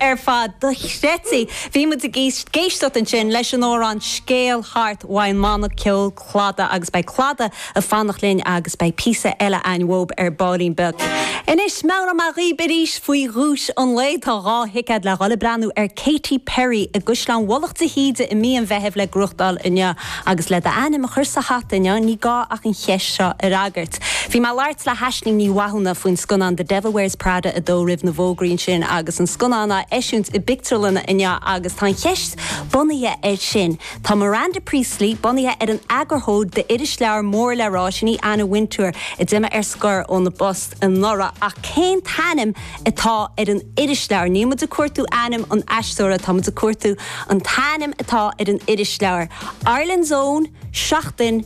ar fad do Chretí. Bhí muid ag éisteacht ansin leis an amhrán Scéal Thart ón mbanna ceoil Clada agus beidh Clada ag fanacht linn agus beidh píosa eile a'ainn uathub ar ballín beag. Anois, meabhróidh mé dhaoib arís faoi dhuais an lae, tá dhá thicéad le dhul ag breathnú ar Katy Perry i gCaisleán Mhullach Íde i mí an Mheithimh le gnóthachtáil inniu. Agus le d'ainm a chur sa hata inniu ní gá ach an cheist seo a fhreagairt. Bhí mé ag labhairt le hAisling Ní Mhathúna faoin scannán The Devil Wears Prada 2 roimh na bhfógraí ansin agus an scannán á eisiúint i bpictiúrlanna inniu agus tá an cheist bunaithe air sin. Tá Miranda Priestly bunaithe ar an eagarthóir d'irisleabhar mór le rá sin í Anna Wintour a d'imigh ar scor óna post anuraidh ach cén t-ainm atá ar an irisleabhar? Níl muid ag cuartú ainm an aisteora, tá muid ag cuartú an t-ainm atá ar an irisleabhar. Ireland's Own, Seachtain.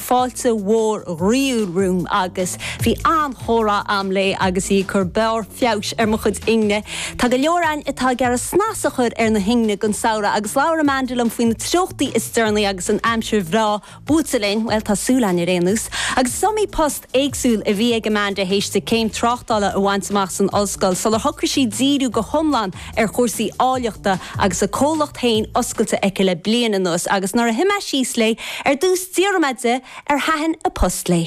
fáilte mhór ghroíúil romham agus bhí an-chomhrá agam léi agus í ag cur barr feabhais ar mo chuid ingne. Tá go leor againn atá ag iarraidh snas a chur ar na hingne don samhradh agus labhair Amanda liom faoi na treochtaí is deireanaí agus an aimsir bhreá buailte linn, bhuel, tá súil a'ainn ar aon nós! Agus is iomaí post éagsúil a bhí ag Amanda théis di céim tráchtála a bhaint amach san ollscoil sular shocraigh sí díriú go hiomlán ar chúrsaí áilleachta agus a comhlacht féin oscailte aici le bliain anuas agus nuair a shuigh mé síos léi ar dtús d'fhiafraigh mé di ar thaitin a post léi.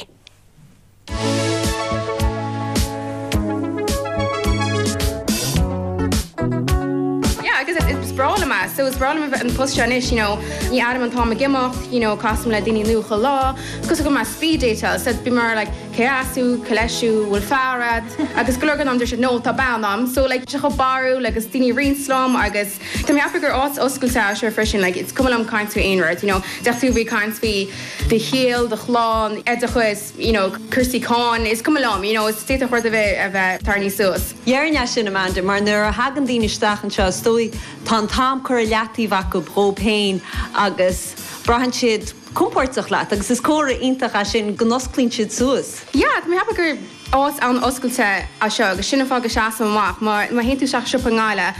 Yeah, agus is breá liom é. So, is breá liom a bheith ag an post seo anois, you know, ní airím an t-am ag imeacht, you know, casaim le daoine nua chuile lá, cosúil go mbím ag speed dateáil, so bím mar like, Cé as thú? Cé leis thú? Bhfuil fear a'd? Agus go leor den am do no tá bean a'm so like bíonn sé chomh barrúil agus daoine roinnt liom agus tá mé ag ceapadh gur áit oscailte é seo freisin like it's cuma liom caint faoi aon rud you know d'fhéadfadh tú a bheith ag caint faoi do shaol, do chlann, oideachas you know cúrsaí cáin is cuma liom you know is d'fhéadfadh rud a bheith a bheith tarraingthe suas. Dhearna é sin, Amanda, mar nuair a thagann daoine isteach anseo is dóigh tá an t-am curtha i leataobh acub dhób fhéin agus braitheann siad, compordach leat agus is comhartha iontach é sin go n-osclaíonn siad suas. Yeah, tá mé ag ceapadh gur áit an-oscailte é seo agus sin an fáth go seasaim amach. Má má théann tú isteach siopa i nGaillimh,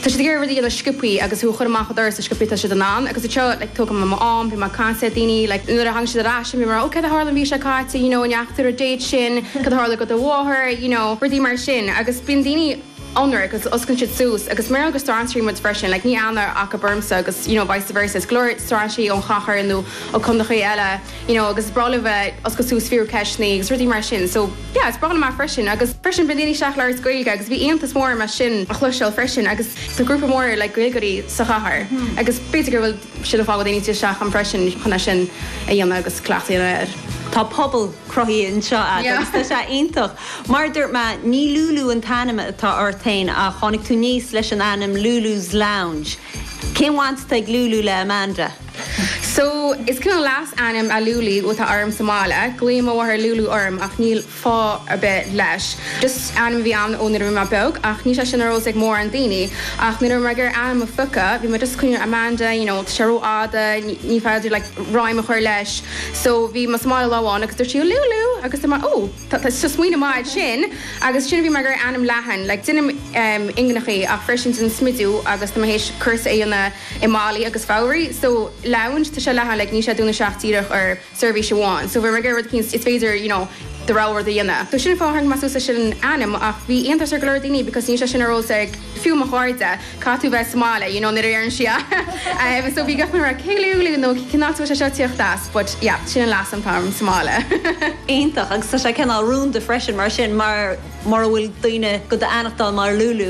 tá siad ag iarraidh rud a dhéanamh go sciobthaí agus tú a chur amach an doras chomh sciobthaí is atá siad in ann agus anseo like tógaim mo am, bím ag caint le daoine like nuair a tháinig siad ar ais bím mar oh cad a tharla an mhí seo caite you know an ndeachaigh tú ar an date sin, cad a tharla do do mháthair you know rudaí mar sin agus bíonn daoine ionraic agus osclaíonn siad suas agus mar agus strainséirí muid freisin like níl aithne acub ormsa agus you know vice versa is go leor strainséirí ón chathair nó ó condaechaí eile you know agus is breá leo bheith ag oscailt suas fiafraí ceisteannaí agus rudaí mar sin so yeah is breá liom é freisin agus freisin bíonn daoine isteach ag labhairt Gaeilge agus bhí iontas mór orm é sin a chloisteáil freisin agus tá grúpa mór like Gaeilgeoirí sa chathair agus b'fhéidir go bhfuil sin é faigheann daoine teacht isteach ann freisin chun é sin a dhéanamh agus cleachtadh a dhéanamh air. Tá pobal cruthaithe anseo agat agus tá sé iontach. Mar a dúirt mé, ní Lúlú an t-ainm atá ort féin ach tháinig tú aníos leis an ainm Lulu's Lounge. Cén bhaint atá ag Lúlú le Amanda? So, is cineál leasainm é Lúlú atá orm sa mbaile. Glaoíonn mo mháthair Lúlú orm ach níl. fáth ar bith leis. Just ainm a bhí ann ó nuair a bhí mé beag ach níl sé sin ar eolas ag mórán daoine. Ach nuair a bhí mé ag iarraidh ainm a phiocadh, bhí mé just ag cuimhneamh Amanda, you know, tá sé ró-fhada, ní féidir like ráim a chur leis. So bhí mo mháthair lá amháin agus dúirt sí Lúlú agus dúirt mé oh, tá tá smaoineamh maith ansin. Agus sin a bhí mé ag iarraidh ainm leathan, like déanaim em ingneachaí ach freisin déanaim smideadh agus tá mé tar éis cúrsa a dhéanamh i malaí agus fabhraí. So lounge, tá sé leathan like níl sé dúnta isteach díreach ar. seirbhís amháin. So bhí mé ag iarraidh rud éigin is féidir you know do rogha rud a dhéanamh. So sin fáth tháinig mé suas leis an ainm ach bhí iontas ar go leor daoine because níl sé sin ar eolas ag fiú mo chairde, caithfidh tú bheith sa mbaile you know nuair a deireann sí é em. So bhí gach duine like cé Lúlú nó cén áit a bhfuil sé seo ag tíocht as but yeah sin an leasainm atá orm sa mbaile. Iontach agus tá sé cineál rúnda freisin mar sin mar mura bhfuil daoine do d'aithneachtáil mar Lúlú.